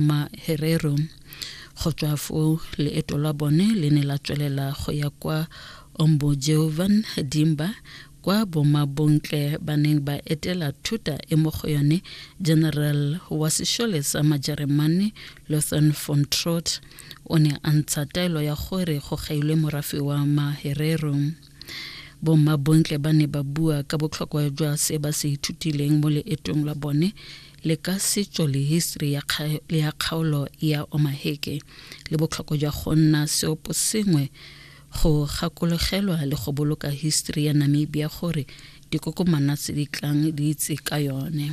Maherero. Go tswa foo leeto la bone le ne la tswelela go ya kwa Ombojeovan Dimba kwa bomabontle ba neng ba etela thuta e mo go yone general wa sešole sa majeremane lothan von trot o ne a ntsha taelo ya gore go gailwe morafe wa maherero bomabontle ba ne ba bua ka botlhokwa jwa se ba se ithutileng mo leetong la bone le ka setso le history ya, kga, ya kgaolo ya omaheke le botlhokwa jwa go nna seopo sengwe go gakologelwa le go boloka history ya namibia gore dikokomana tse di tlang di itse ka yone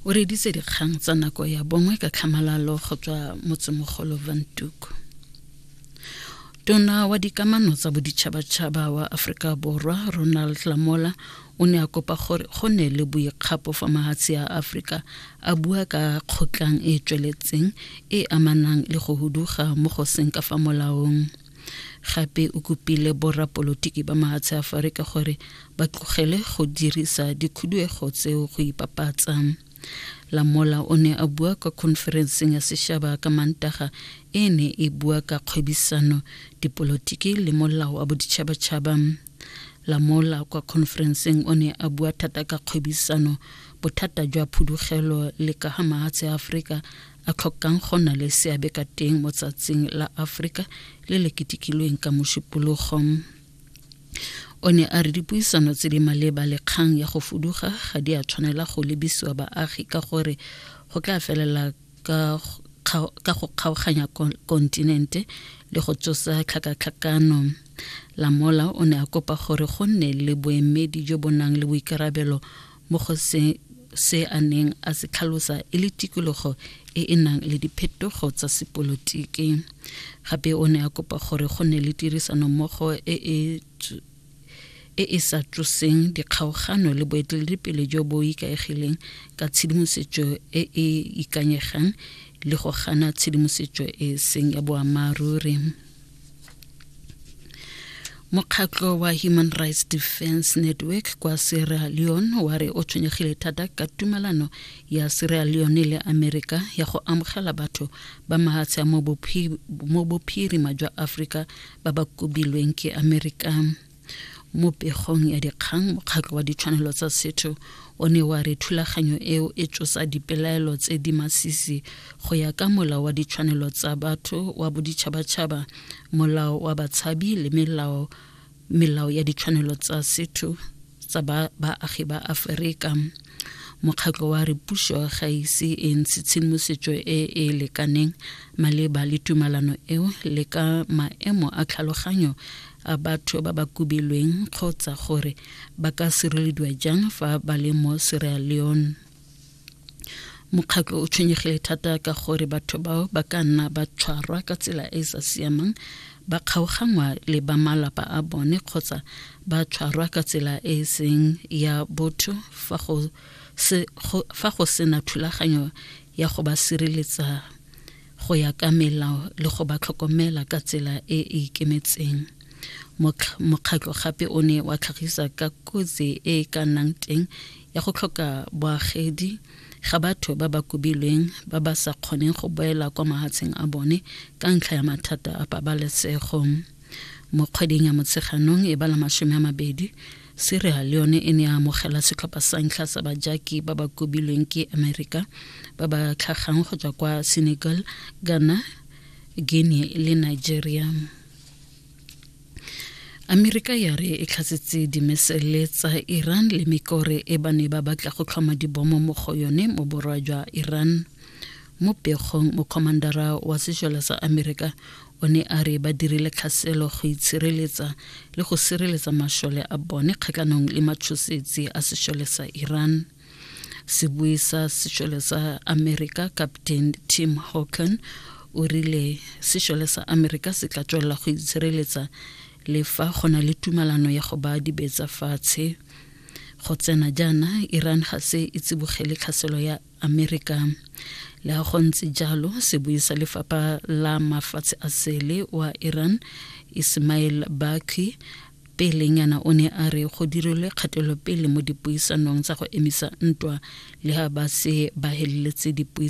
o reditse dikgang tsa nako ya bongwe ka tlhamalalo go tswa motsemogolo vantuko tona wa dikamano tsa boditšhabatšhaba wa aforika borwa ronald lamola o ne a kopa gore go ne le boikgapo fa mahatshe a aforika a bua ka kgotlang e e tsweletseng e amanang le go huduga mo go seng ka fa molaong gape o kopile borrapolotiki ba mahatshe a aforika gore ba tlogele go dirisa dikhuduego tseo go ipapatsa Lamola o ne a bua kwa khonferenseng ya sešaba ka mantaga e ne e bua ka kgwebisano dipolotiki le molao wa boditšhabatšhaba Lamola kwa khonferenseng o ne a bua thata ka kgwebisano bothata jwa phudugelo le ka ga mahatshe a aforika a tlhokang go na le seabe ka teng mo tsatsing la aforika le le ketekilweng ka mošupologo o ne a re dipuisano tse di maleba le kgang ya go fuduga ga di a tshwanela go lebisiwa baagi ka gore go tla felela ka go kgaoganya kontinente le go tsosa tlhakatlhakano lamola o ne a kopa gore go nne le boemedi jo bo nang le boikarabelo mo go se se a neng a se tlhalosa e le tikologo e e nang le diphetogo tsa sepolotiki gape o ne a kopa gore go ne le tirisanommogo e e e e sa tsoseng dikgaogano le boeteledipele jo bo ikaegileng ka tshedimosetso e e ikanyegang le go gana tshedimosetso e seng ya boammaaruri mokgatlo wa human rights defense network kwa sierra leone wa re o tshwenyegile thata ka tumelano ya sierra leone le amerika ya go amogela batho ba mahatsha mo bophirima jwa aforika ba ba kobilweng ke amerika mo pegong ya dikgang mokgatlho wa ditshwanelo tsa setho o ne wa re thulaganyo eo e tsosa dipelaelo tse di masisi go ya ka molao wa ditshwanelo tsa batho wa boditšhabatšhaba molao wa batshabi le melao melao ya ditshwanelo tsa setho tsa baagi ba aferika mokgatlho wa re puso ga ise e ntshe tshedimosetso e e lekaneng maleba le tumalano eo le ka maemo a tlhaloganyo a batho ba ba kubilweng kgotsa gore ba ka sirelediwa jang fa ba le mo Sierra Leone mokgatlho o tshwenyegile thata ka gore batho bao ba ka nna ba tshwarwa ka tsela e e sa siamang ba kgaoganngwa le ba malapa a bone kgotsa ba tshwarwa ka tsela e e seng ya botho fa go se fa go sena thulaganyo ya go ba sireletsa go ya ka melao le go ba tlhokomela ka tsela e e ikemetseng mokgatlho gape o ne wa tlhagisa ka kotsi e e ka nnang teng ya go tlhoka boagedi ga batho ba ba kobilweng ba ba sa kgoneng go boela kwa mahatsheng a bone ka ntlha ya mathata a pabalesego mo kgweding ya motsheganong e bala masome a mabedi Sierra Leone e ne ya amogela setlhopha sa ntlha sa bajaki ba ba kobilweng ke Amerika ba ba tlhagang go tswa kwa Senegal, Ghana, Guinea le Nigeria. amerika ya re e tlhatsetse dimesele tsa iran le mekore e ba ne ba batla go tlhoma dibomo mo go yone mo borwa jwa iran mo pegong mokgomandara wa sejala sa amerika o ne a re ba dirile tlhaselo go itshireletsa le go sireletsa mashole a bone kgatlhanong le matshosetsi a sešole sa iran sebui sa sešole sa amerika captain tim hawken o rile sešole sa amerika se tla tswelela go itshireletsa le fa go na le tumalano ya go ba dibetsa fatshe go tsena jaana iran ga se e tsibogele tlhaselo ya Amerika. Le go ntse jalo sebui sa lefapha la mafatshe a sele wa Iran Ismail Baqi pelenyana o ne a re go dirilwe kgatelopele mo dipuisanong tsa go emisa ntwa le ga ba se ba heleletse dipuisano